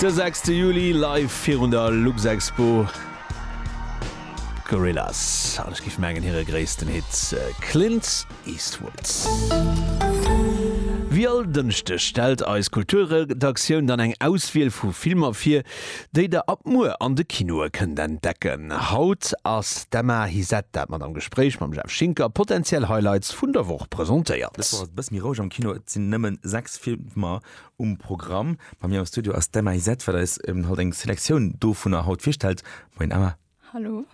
De sechste Juli live virun der Luxexpo, d'Gorillaz, an ech giff mengen hire gréissten Hit Clint Eastwood. Wéi all Dënschdeg stellt eis Kulturredaktioun dann eng Auswiel vu Filmer vir, déi der ab muer an de Kinoe kënnt entdecken. Haut ass d'Emma Hisette dat mat am Gespréich mam Jeff Schinker potenziell Highlights vun der Woch presentéiert. Dës Woch ass et e bësse méi roueg am Kino, et sinn nëmmen 6 Filmer. Mer um Programm bei mir am Studio ass d'Emma Isett, wat eis haut eng Selektioun dovunner haut virstellt. Moin Emma. Hallo.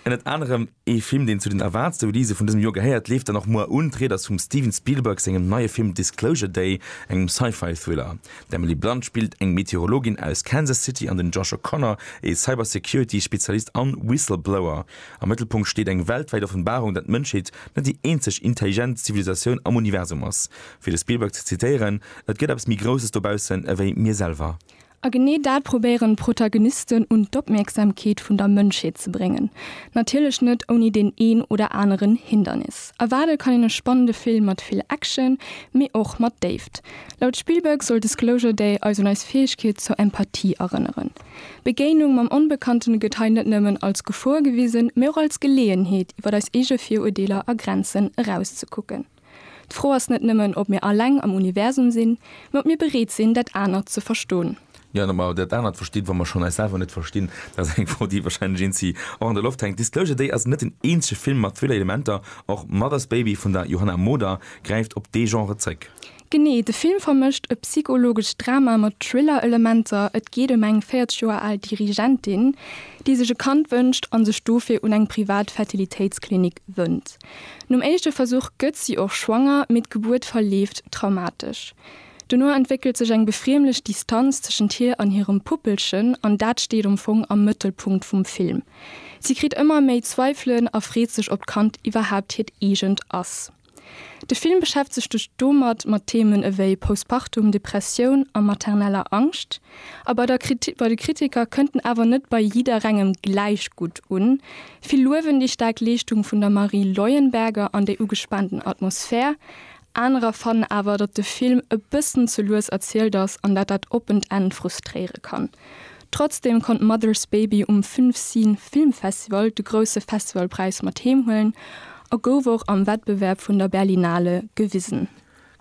Ënnert anerem ee Film, deen zu den Awards-Release vun dësem Joer gehéiert, leeft dann och muer un. D'Ried ass vum Steven Spielberg sengem neie Film Disclosure Day, engem Sci-Fi-Thriller. D'Emily Blunt spillt eng Meteorologin aus Kansas City an den Josh O'Connor ee Cybersecurity-Spezialist an Whistleblower. Am Mëttelpunkt steet eng weltwäit Offenbarung, dat d'Mënschheet net déi eenzeg intelligent Zivilisatioun am Universum ass. Fir de Spielberg ze zitéieren, Et gëtt eppes méi Grousses dobaussen ewéi mir selwer. A genee dat probéieren d'Protagonisten un d'Opmierksamkeet vun der Mënschheet ze bréngen. Natierlech net ouni deen een oder aneren Hindernis. Erwaarde kann een e spannende Film mat vill Action, mee och mat Déift. Laut Spielberg soll Disclosure Day eis un eis Fäegkeet zur Empathie erënneren. D'Begéinung mam Onbekannten gëtt hei net nëmmen als Gefor gewisen, mee och als Geleeënheet, iwwer eis eege Virurdeeler a Grenzen erauszekucken. D'Fro ass net nëmmen, ob mir alleng am Universum sinn, mä ob mir bereet sinn, dat anert ze verston. Jo, an ob mer dat anert verstinn, wa mer schonn eis selwer net verstinn, dat ass eng Fro, déi wahrscheinlech eenzi och an der Loft hänkt. Disclosure Day ass net den eenzege Film mat Thriller-Elementer. Och Mother's Baby vun der Johanna Moder gräift op dee Genre zréck. Genee, de Film vermëscht e psychologescht Drama mat Thriller-Elementer. Et geet ëm eng 40 Joer al Dirigentin, déi sech e Kand wënscht a sech dofir un eng privat Fertilitéitsklinik wënnt. Nom éischte Versuch gëtt si och schwanger, mee d'Gebuert verleeft traumatesch. Dono entwéckelt sech eng befriemlech Distanz tëschent hir an hirem Puppelchen an dat steet am Fong am Mëttelpunkt vum Film. Si kritt ëmmer méi Zweifelen a freet sech, ob d'Kand iwwerhaapt hiert eegent ass. De Film beschäftegt sech domat mat Themen ewéi Postpartum, Depressioun a materneller Angscht. A bei de Kritiker kënnt en awer net bei jidderengem gläich gutt un, Vill luewen déi staark Leeschtung vun der Marie Leuenberger an déi ugespaanten Atmosphär. Anerer fannen awer, datt de Film e bëssen ze lues erzielt ass an dat dat oppent Enn frustréiere kann. Trotzdem konnt Mother's Baby um Fünfseen Film Festival de grousse Festivalpräis mat heem huelen a gouf och am Wettbewerb vun der Berlinale gewisen.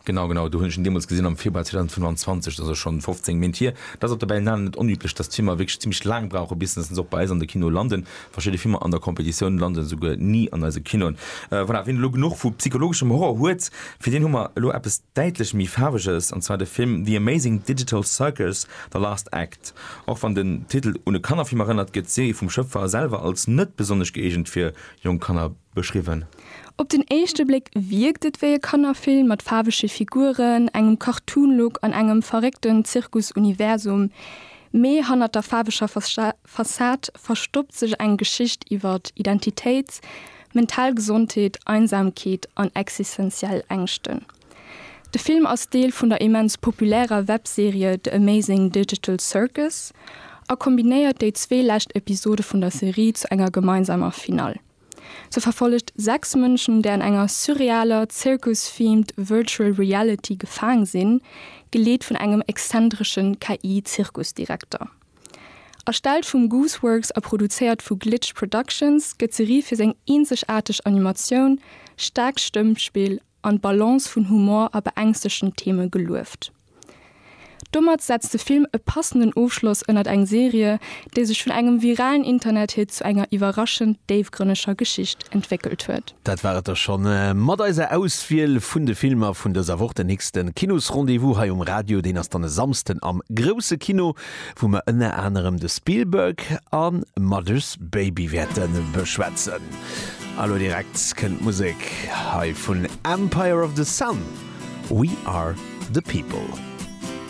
Genau, genau, do hunn ech en deemools gesinn am Februar 2025, dat ass elo schonn 15 Méint hier. Dat ass op der Berlinale net onüblech, dass d'Filmer wierklech zimlech laang brauchen, bis se och bei eis an de Kinoe landen. Verschidde Filmer an der Competitioun landen esouguer ni an eise Kinoen. Voilà, wien elo genuch vu psychologeschem Horror huet, fir deen hu mer elo eppes däitlech méi Faarweges, an zwar de Film The Amazing Digital Circus, The Last Act. Och wann den Titel un e Kannerfilm erënnert, gëtt d'Serie vum Schëpfer selwer als net besonnesch gëeegent fir jonk Kanner beschriwwen. Op den éischte Bléck wierkt et wéi e Kannerfilm mat faarwege Figuren, engem Cartoon-Look an engem verréckten Zirkus-Universum. Mee hannert der faarweger Fassad verstoppt sech eng Geschicht iwwer Identitéit, mental Gesondheet, Einsamkeet an existenziell Ängschten. De Film ass Deel vun der immens populärer Webserie The Amazing Digital Circus a kombinéiert déi zwee lescht Episode vun der Serie zu enger gemeinsamer Finall. Se verfollegt sechs Mënschen, déi an enger surrealer, Zirkus-themed Virtual Reality gefaang sinn, geleet vun engem exzentresche KI-Zirkusdirekter. Erstellt vum Gooseworks a produzéiert vu Glitch Productions, gëtt d'Serie fir seng eenzegaarteg Animatioun, staarkt Stëmmspill an d'Balance vun Humor a beängstegten Theeme gelueft. Domat setzt de Film e passenden Ofschloss ënnert eng Serie, déi sech vun engem viralen Internethit zu enger iwwerraschend déifgrënneger Geschicht entwéckelt huet. Dat war et da scho mat eiser Auswiel vun de Filmer vun dëser Woch. Den nächste Kinosrendez-vous hei um Radio, deen ass dann e Samsden am grousse Kino. wou mer ënner anerem de Spielberg a Mother's Baby wäerte beschwätzen. A lo direkt kënnt d'Musek hei vun Empire of the Sun, We Are the People.